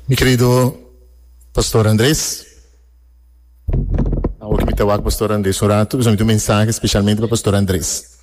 Mi kerido Pastor Andres, awo ke mi ta wak Pastor Andres un ratu, mi tin un mensahe speshalmente pa Pastor Andres.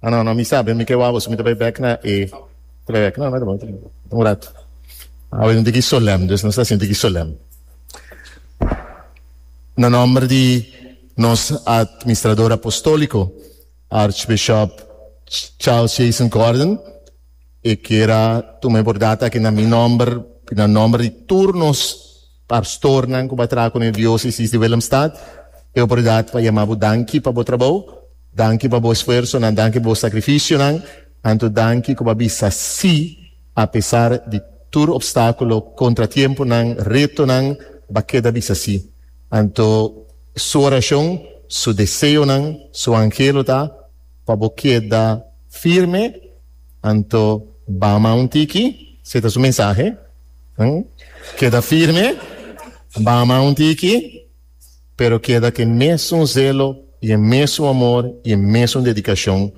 Ah no no mi sa mi ke wak boso, mi ta bai bek na e, ta bai bek, no no ta bon, ta bon, un ratu. Awe no ta ki solèm, nos ta sinti ki solèm. Na nòmber di nos Atministrador Apostóliko, Archbishop Charles Jason Gordon, e kier a tuma e bordad aki na mi nomber y na nomber di tur nos pastornan cu bo a traha cu e Diocesis di Willemstad. E oportunidad pa yama bo danki pa bo trabou, danki pa bo esfuersonan, danki pa bo sacrificionan. Anto danki cu bo a bisa si apesar di tur obstaculo, contratiemponan, retonan bo a keda bisa si. Anto su oracion, su deseonan, su angelo ta. Pa bo keda firme, anto bama un tiki. Si e ta su mensahe. Keda firme, bama un tiki, pero keda ku e mesun zelo i e mesun amor i e mesun dedikashon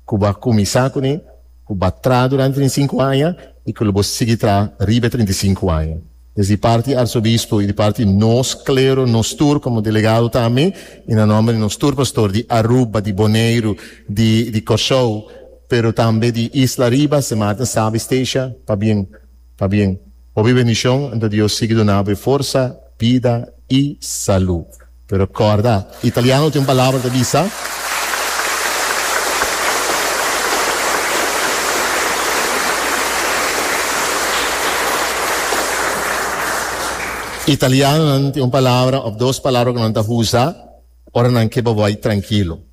ku bo a kuminsá kuné, ku bo a traha durante trinta i sinku aña i ku lo bo sigui traha riba e trinta i sinku aña. Des di parti Arsobispo y di parti nos clero nos tur como delegado tambe y na nomber di nos tur pastor di Aruba, di Boneiru, di di Corsou pero tambe di Isla Riba se Maarten sabi Stacia pa bien pa bien hopi bendicion ento Dios sigui dunabo e forsa, bida y salud. Pero corda, italiano tin un palabra ta bisa, Italianonan tin un palabra of dos palabra cu nan ta usa ora nan ke bo bay trankilo.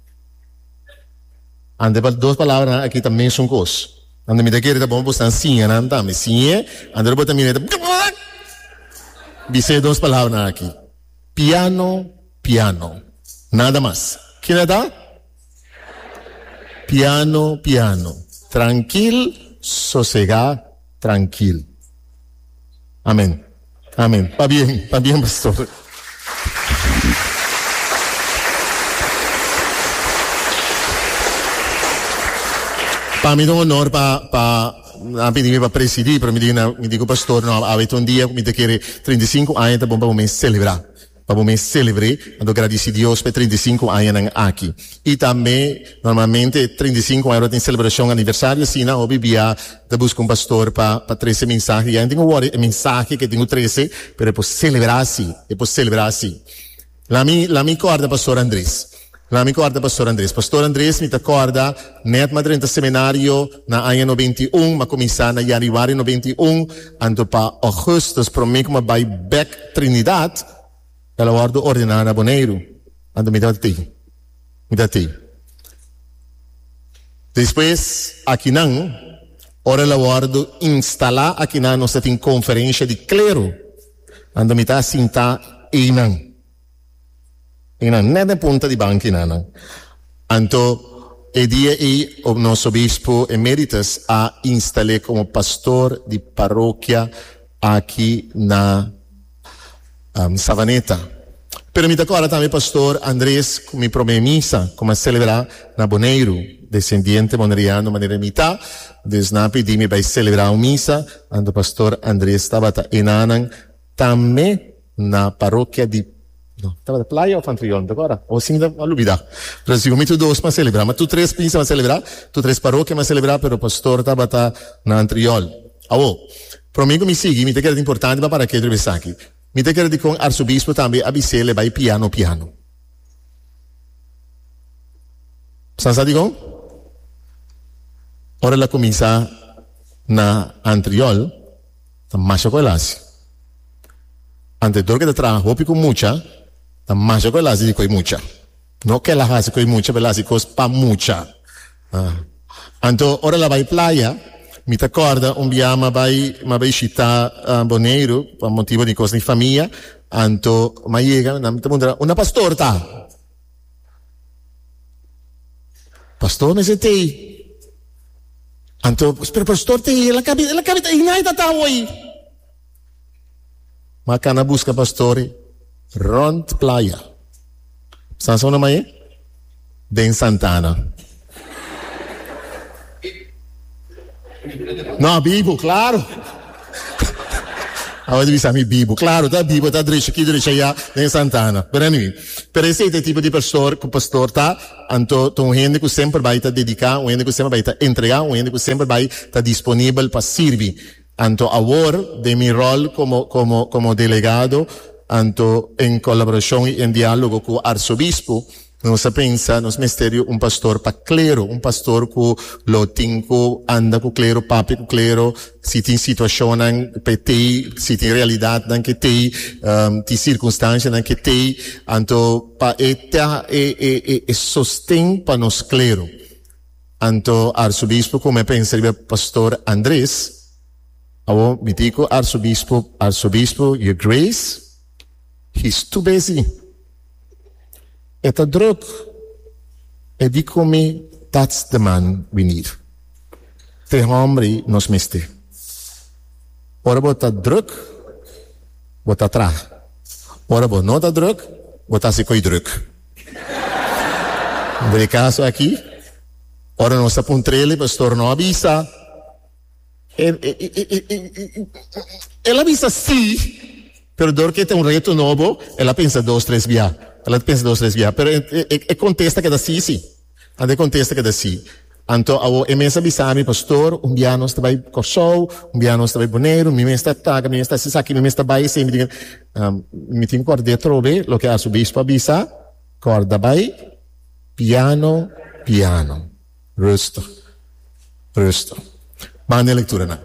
Ante pa dos palabranan aki ta mesun cos. Anto mi ta kere ta bon bo stan siña nan tambe. Siñe, anto ora bo ta mira e ta bjak bjak bise e dos palabranan aki. Piano, piano. Nada mas. Kina ta? Piano, piano. Trankil, sosegá, trankil. Amen. Amen. Pabien, pabien, pastor. Pa mi ta un honor pa, pa. Nan a pidi mi pa presidí, pero mi di nan, mi di ku pastor, no, awe ta un dia ku mi ta kere, treinta i sinku aña ta bon pa bo mes selebrá, pa bo mes selebr'é, anto gradisí Dios pa e treinta i sinku aña nan aki. I tambe, normalmente treinta i sinku aña lo tin selebrashon aniversario asina, hopi bia ta buska un pastor pa pa trese e mensahe di ai. Nan tin ku wòrdu e mensahe ku e tin ku trese, pero e por selebrá así, e por selebrá así. Lami lami kòrda Pastor Andres. Lami kòrda Pastor Andres. Pastor Andres mi ta kòrda nèt madren ta semenario na aña noventa i un, m'a kuminsá na yanüari noventa i un, anto pa ògùstùs promé ku m'a bai bèk Trinidad, el a wòrdu ordená na Boneiru, anto mi tabata tei, mi ta tei. Despues akinan, ora el a wòrdu instalá akinan nos ta tin konferensha di klero. Anto mi ta sintá einan, einan, nèt den punta di banki nanan. Anto e dia ei nos Obispo Emeritus a instal'é komo pastor di parokia aki na Savaneta. Pero mi ta kòrda tambe Pastor Andres ku mi promé misa ku mi a selebrá, Na Boneiru, desendiente Moneriano manera mi ta, desnan pidi mi bai selebrá un misa anto Pastor Andres tabata enanan tambe na Parokia di, no, tabata Playa of Antrion, ta kòrda? O si mi ta lubidá. Pero sigur mi tur dos m'a selebrá, ma tur tres misa m'a selebrá, tur tres parokia m'a selebrá, pero Pastor tabata na Antriol. Awo, promé ku mi sigui, mi ta kere di importante pa para keda esaki. Mi ta kere di kon Arsobispo tambe a bis'é le bai piano piano. San sa digo? Ora la cominsa na antriol, ta masha cu el haci. Antedor que ta traha hopi cu mucha, ta masha cu el haci di cu e mucha. No que el a haci cu e mucha, pero el a haci cos pa mucha. Anto ora el a bai playa, mi ta kòrda un biaha mi a bai mi a bai shita Boneiru pa motibu di kos di famia anto mi a yega nan mi ta puntra unda pastor ta? Pastor mester ta ei anto pero pastor ta ei el a kabi el a kabi ta ei nai ta ta awor ei. Ma ka na buska pastori rond playa. San so na maye? Den Santa Ana. No, bibu, claro. Awor e bisa mi bibu. Claro, ta bibu, ta drecha aquí, drecha allá, den Santa Ana. Pero anyway, pero ese te tipo de pastor cu pastor ta, anto ta un hende cu semper bai ta dedica, un hende cu semper bai ta entrega, un hende cu semper bai ta disponibel pa sirbi. Anto awor den mi rol komo komo komo delegado, anto en kolaborashon i en diálogo ku arsobispo, nos a pensa nos mester di un pastor pa klero, un pastor ku lo tin ku anda ku klero, papia ku klero, si tin situashonnan pa e tei, si tin realidatnan ku e tei, tin sirkunstanshanan ku e tei, anto pa e ta e e e sosten pa nos klero. Anto Arsobispo ku me pensa riba Pastor Andres, awor mití ku Arsobispo, Arsobispo Your Grace, he's too busy. E ta druk, e di ku mi that's the man we need. Te hòmbri nos mester. Ora bo ta druk, bo ta traha. Ora bo no ta druk, bo ta hasi ko'i druk. Por e caso aki, ora nos ta pon trela e pastor no a bisa, e, e, e, e, e, e, e, e, el a bisa sí, pero dor ke ta un reto nobo, el a pensa dos, tres bia, el a pensa dos, tres bia, pero e, e, e, e contesta keda sí, sí. Ande contesta keda si. Anto awo e mes a bisa mi, Pastor, un bia nos ta bai Corsou, un bia nos ta bai Boneiru, mi mes ta ataca, mi mes ta haci esaki, mi mes ta bai esey, mi tin que. Mi tin cu ardé trobe loke Arzobispo a bisa, Corda bai piano, piano, rustig. Rusto. Manda e lekturanan.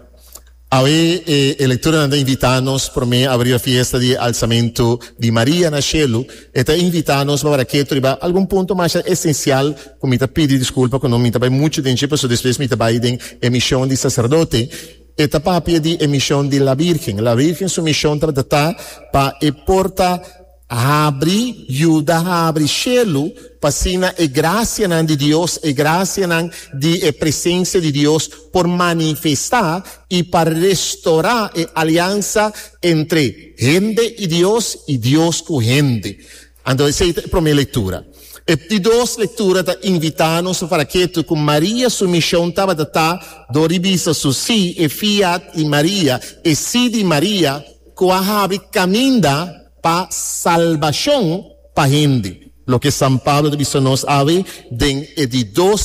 Awe e e lekturanan ta invitá nos promé a riba fiesta di e alsamentu di Maria na shelu. E ta invitá nos pa wòrdu ketu riba algun punto masha esensial ku mi ta pidi diskulpa ku no mi ta bai muchu den dje pasobra despues mi ta bai den e mishon di saserdote. E ta papia di e mishon di La Bírgen. La Bírgen su mishon tabata ta pa e por ta. Habri, yuda habri shelu, p'asina e grasianan di Dios, e grasianan di e presensia di Dios por manifestá i pa restorá e aliansa entre hende i Dios i Dios ku hende. Anto esei ta e promé lektura. E di dos lektura ta invitá nos pa fala ketu ku Maria su mishon tabata ta dor di bisa su sí, e fiat di Maria, e sí di Maria, ku a habri kaminda pa salbashon pa hende, loke San Pablo ta bisa nos awe den e di dos.